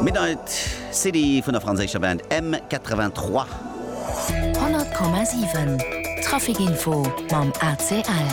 Midnight City vun der franséischer Band M83. 100,7 Trafic Info mam ACL.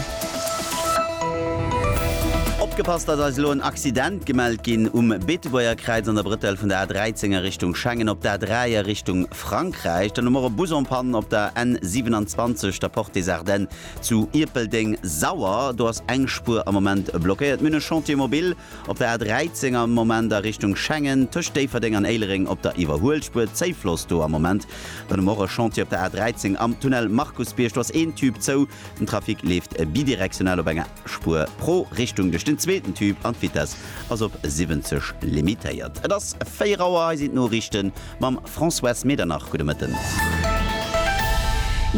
Opgepasst, dass eis elo en Accident gemellt ginn um Beetebuerger Kräiz an der Brëtell vun der A13 a Richtung Schengen op der A3 a Richtung Frankräich. Dann hu mer och e Bus en Panne op der N27, der Porte des Ardennes zu Ierpeldeng-Sauer. Do ass eng Spuer am Moment blockéiert. Mir hunn e Chantier mobile. Op der A13 am Moment a Richtung Schengen, tëscht Déifferdeng an Éilereng op der Iwwerhuelspuer, Zéifloss do am Moment. Dann hu mer och e Chantier op der A13 am Tunnel Markusbierg, do ass een Tube zou. Den Trafic leeft bidirektional op enger Spuer pro Richtung duerch den zweeten Tube an d'Vitess ass op 70 limitéiert. Et ass 4 Auer, hei sinn d'Noriichten Mam Françoise Medernach, gudde Mëtten.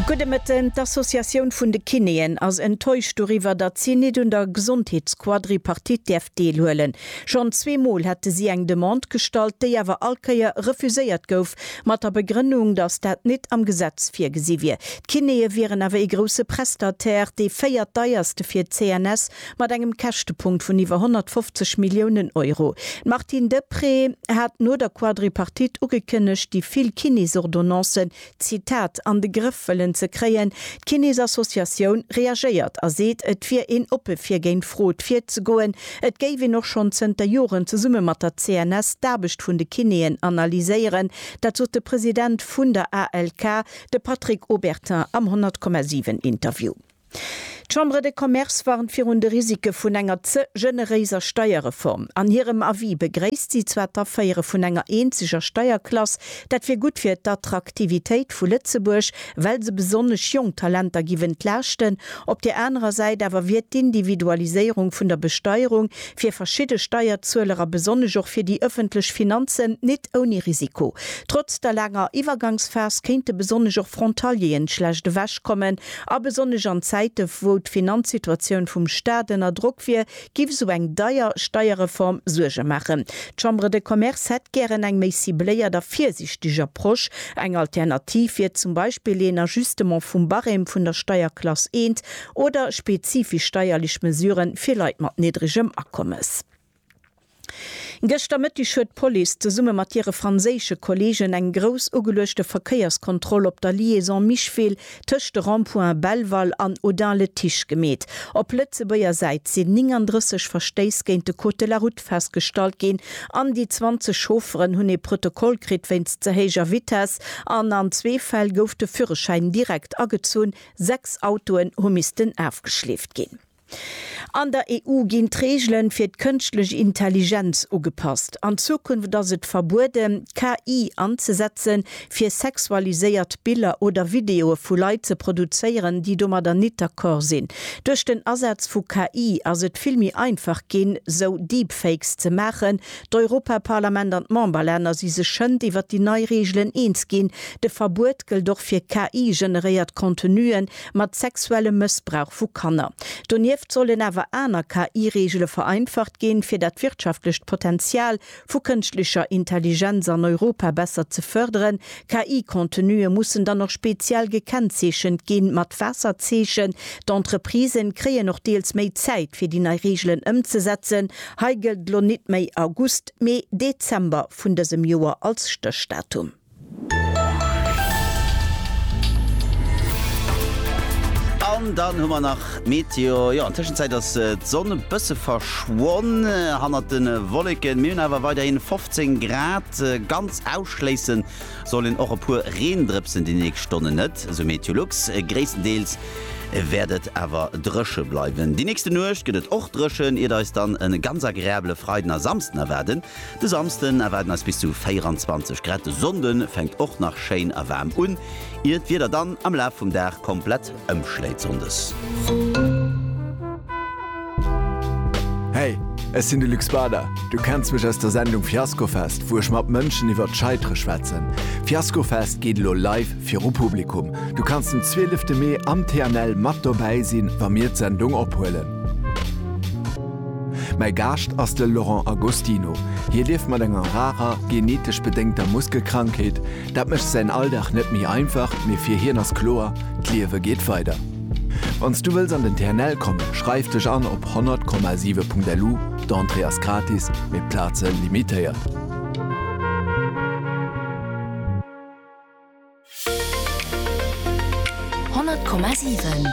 Gudde Mëtten. D'Associatioun vun de Kinéen ass enttäuscht doriwwer, datt si nit un der Gesondheetsquadripartite däerf deelhuelen. Schonn zwee Mol hätte si eng Demande gestallt, déi awer all Kéier refuséiert gouf, mat der Begrënnung, datt dat nit am Gesetz virgesi wier. D'Kinéeë wieren awer ee grousse Prestataire, dee véiertdeierste fir d'CNS Mat engem Käschtepunkt vun iwwer 150 Milliounen Euro. D'Martine Deprez hat no der Quadripartite ugekënnegt, déi vill Kinesordonnancen, Zitat, an de Grëff wëllen ze kréien. D'Kinesassociatioun reagéiert a seet, et wier een oppe fir géint Frod virzegoen. Et géif een och schonn zënter Joren zesumme mat der CNS d'Aarbecht vun de Kinéen analyséieren. Dat sot de President vun der ALK, de Patrick Obertin am 100,7 Interview. D'Chambre de Commerce warnt virun de Risike vun enger ze generéiser Steierreform. An hirem Avis begréisst si zwar d'Aféiere vun enger eenzeger Steierklass, dat wier gutt fir d'Attraktivitéit vu Lëtzebuerg, well se besonnesch jonk Talenter giff entlaaschten. Op der anerer Säit awer wier d'Individualiséierung vun der Besteierung fir verschidde Steierzueler a besonnesch och fir déi ëffentlech Finanzen nit ouni Risiko. Trotz der laanger Iwwergangsphas kéinte besonnesch och Frontalieren schlecht ewechkommen, A besonnesch an Zäite wou d'Finanzsituatioun vum Staat ënner Drock wier, giff esou eng deier Steierreform Suerge maachen. D'Chambre de Commerce hätt gären eng méi cibléiert a virsichteg Approche. Eng Alternativ wier zum Beispill een Ajustement vum Barème vun der Steierklass eent oder spezifesch steierlech Mesuren fir Leit mat niddregem Akommes. Gëschter Mëtteg huet d'Police zesumme mat hire franséische Kolleegen eng grouss ugeluechte Verkéierskontroll op der Liaison Micheville tëscht de Rond-points Belval an Audun-le-Tiche gemeet. Op Lëtzebuerger Säit sinn 39 Verstéiss géint de Code de la Route festgestallt ginn an déi 20 Chaufferen hunn ee Protokoll kritt wéinst ze héijer Vitess an an zwee Fäll gouf de Führerschäin direkt agezunn. Sechs Autoen hu missten afgeschleeft ginn. An der EU ginn d'Reegele fir d'kënschtlech Intelligenz ugepasst. An Zukunft ass et verbueden, KI anzesetzen, fir sexualiséiert Biller oder Videoe vu Leit ze produzéieren, déi domadder nit d'accord sinn. Duerch den Asaz vu KI ass et vill méi einfach ginn, sou Deepfakes ze maachen. D'Europaparlament an d'Memberlänner si sech schënd iwwer déi nei Reegelen eens ginn. De Verbuet gëllt och fir KI-generéiert Contenuen, mat sexuellem Mëssbrauch vu Kanner. Donieft sollen awer aner KI-Reegele vereinfacht ginn, fir dat wirtschaftlecht Potenzial vu kënschtlecher Intelligenz an Europa besser ze fërderen. KI-Contenue mussen dann och speziell gekennzeechent gi mat Waasserzeechen. D'Entreprisen kréien och deels méi Zäit, fir déi nei Reegelen ëmzesetzen. Hei gëllt elo nit méi August, mee Dezember vun dësem Joer als Stéchdatum. An dann hu mer nach d'Meteo. Jo, an Tëschenzäit ass d'Sonn e bësse verschwonn hannert de Wolleken. Mir hunn awer weiderhi 15 Grad. Ganz ausschléisse soll een och e puer Reendrëpsen déi nächst Stonnen net, esou Meteolux. Gréisstendeels wäert et awer dréche bleiwen. Déi nächste Nuecht gëtt et och dréchen, iert eis dann e ganz agreabele Freiden a Samsden erwaarden. De Samsden erwaarden eis bis zu 24 Grad, de Sonnde fänkt och nach schéin a waarm un, ier d'Wieder dann am Laf vum Dag komplett ëmschléit Sonndes. Hey, ech sinn de Luc Spader. Du kenns mech aus der Sendung Fiaskofest, wou ech mat Mënschen iwwert d'Scheitere schwätzen. Fiaskofest geet elo live viru Publikum. Du kanns den 12 Mee am TNL mat dobäi sinn, wa mir d'Sendung ophuelen. Mäi Gaascht ass de Laurent Agostino. Hie lieft mat enger rarer, genetesch bedéngter Muskelkrankheet. Dat mécht säin Alldag net méi einfach, mee fir hien ass kloer, D'Liewe geet weider. Wann s du wëlls an den TNL kommen, schreif dech an op 100,7.lu. D'Entrée ass gratis, mee d'Plaze limitéiert. Honnert Komma siwen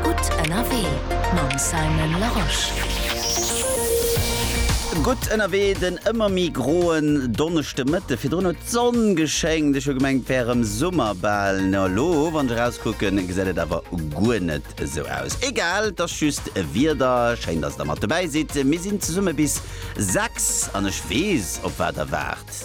Gutt ënnerwee mam Simon Larosche. Gutt ënnerwee den ëmmer méi groen Donneschdemëtte. Virdrun huet d'Sonn geschéngt, ech hu gemengt et wär erëm Summer bal. No elo wann ech erauskucken gesäit et awer guer net esou aus. Egal, et ass just Wieder. Schéin dass der mat dobäi sidd. Mir sinn zesumme bis 6 an ech weess op wat der waart.